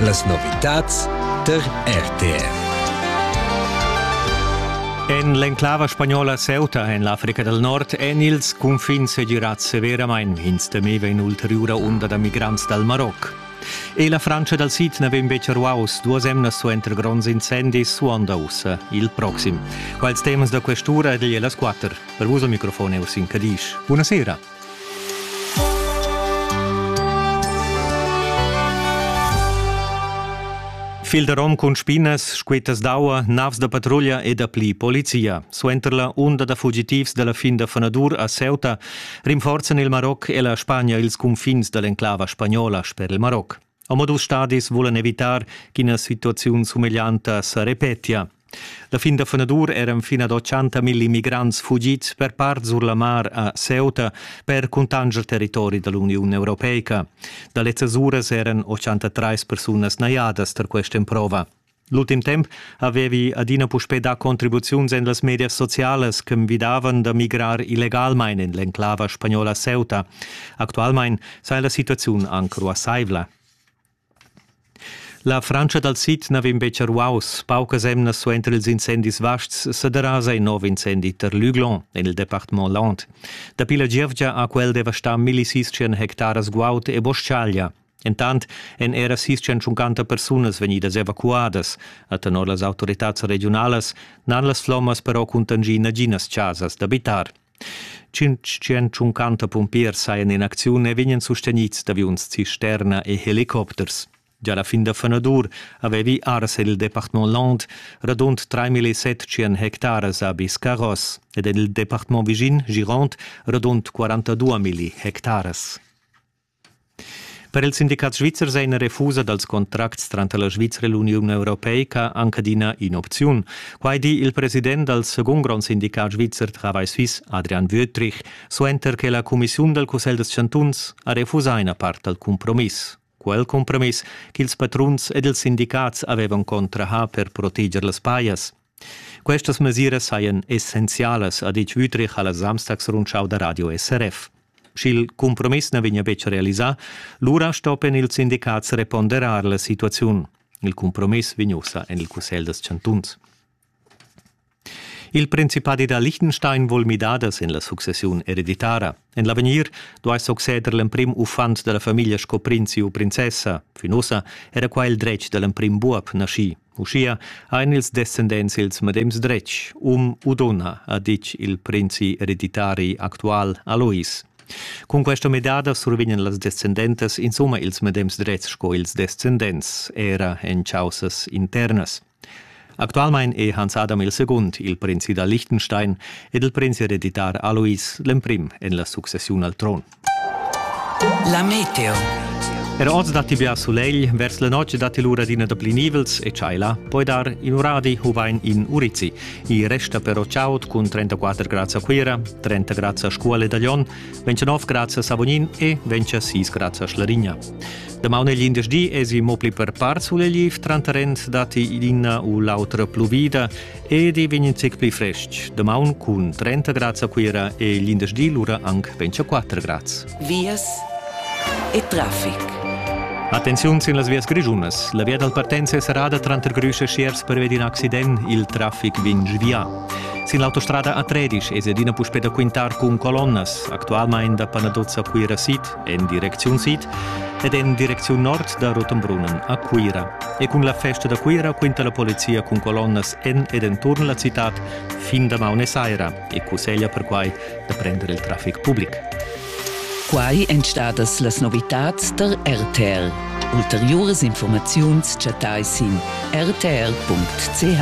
Las novitads tar RTR. En l'enclava spagnola Ceuta en l'Africa dal Nord èn ils cunfins segirads severamain. Ins temeva in'ulteriura unda da migrants dal Maroc. E la Frantscha dal sid na vegn betg ruaus. Duas emnas suenter gronds incendis suonda ussa il proxim. Quels temas da questura ed las quatter. Per vus al microfon è Ursin Cadisch. Buonasera. Fil da rom cun spinas, squetas d'aua, navs da patruglia e dapli polizia. Suenter la unda da fugitivs dalla fin da Fanadur a Ceuta rinforzan il Maroc e la Spagna ils cunfins dall'enclava spagnola sper il Maroc. Omadus stadis vulan evitar ch'ina situaziun sumeglianta sa repetia. La fin da fenadur eran fin ad 80 milli migrants fugids per part sur la mar a Ceuta per cuntanscher territori da l'Uniun europeica. Da lezzas uras eran 83 persunas najadas tar questa emprova. L'ultim temp avevi adina puspè dà contribuziuns en las medias socialas che envidavan da migrar illegalmain en l'enclava spagnola Ceuta. Actualmain saja la situaziun anc ruassaivla. La Frantscha dal sid n'aveva betg ruaus. Paucas emnas suenter ils incendis vasts sa derasa in nov incendi tar Luglon, en il departament Land. Dapi la gievgia ha quel devastà milli sis hectaras guaud e boschaglia. Entant èn era sis centuncanta persunas vegnidas evacuadas. A tenor las autoritads regiunalas n'han las flommas però cuntangì naginas chasas d'abitar. 550 pumpiers sajan in acziun e vegnan sustegnids d'aviuns cisterna e helicopters. Già la fin da fenadur avevi ars en il departament Land radund 3.700 hectares a Biscarros ed en il departament vischin Girond radund 42.000 hectares. Per il sindicat svizzer è ina refusa dals contracts tranter la Svizra e l'Uniun europeica anc adina in'opziun. Quai di il president dal segund grond sindicat svizzer Travail Suisse, Adrian Wüthrich, suenter che la cumissiun dal Cussegl dels chantuns ha refusà ina part dal cumpromiss. Quel cumpromiss ch'ils patruns ed ils sindicats avevan contrahà per proteger las pajas. Questas mesiras sajan essenzialas, ha ditg Wüthrich a la Samstagsrundschau da radio SRF. Sch'il cumpromiss na vegnia betg realisà, lura stoppien ils sindicats reponderar la situaziun. Il cumpromiss vegn ussa en il Cussegl dels chantuns. Il Principadi da Liechtenstein vul midadas en la successiun ereditara. En l'avegnir duai succeder l'emprim uffant da la famiglia sco prinzi u princessa. Fin ussa era qua il dretg da l'emprim buob naschì. Uschia ein ils descendents ils medems dretgs, um u donna, ha ditg il prinzi ereditari actual Alois. Cun questa midada survegnan las descendentas insomma ils medems dretgs sco ils descendents, era en caussas internas. Actualmein è Hans Adam II. il prinzi da Liechtenstein ed il prinzi hereditar Alois l'emprim en la successiun al tron. La meteo. Er oz datti bia sulegl, vers la notg datti l'ura d'ina da pli nivels e tschaila. Poi dar in uradi u vain in urizi. I resta però chaud cun 34 grads a Cuira, 30 grads a Scuole da Lyon, 29 grads a Savognin e 26 grads a Schlarigna. Damaun e glindesdi esi mo pli per par sulegliv, tranter rend datti l'ina u l'autra pluvida Ed i vegn in zec pli frestg. Damaun cun 30 grads a Cuira e l'indersdi lura anc 24 grads. Vias e traffic. Attenziun sin las vias grischunas. La via dal partenza è serrada tranter Grüsch e Schierz pervi d'in accident. Il traffic vegn svià. Sin l'autostrada A13 es adina puspè da quintar cun colonnas, actualmain da Panadozza a Cuira Sid, en direcziun sid ed en direcziun nord da Rotenbrunnen a Cuira. E cun la festa da Cuira quinta la polizia cun colonnas en ed enturn la citad fin damaun e saira e cusseglia perquai da prender il traffic public. Quai èn stadas las novitads tar RTL. Ulteriuras informaziuns chattai sin rtl.ch.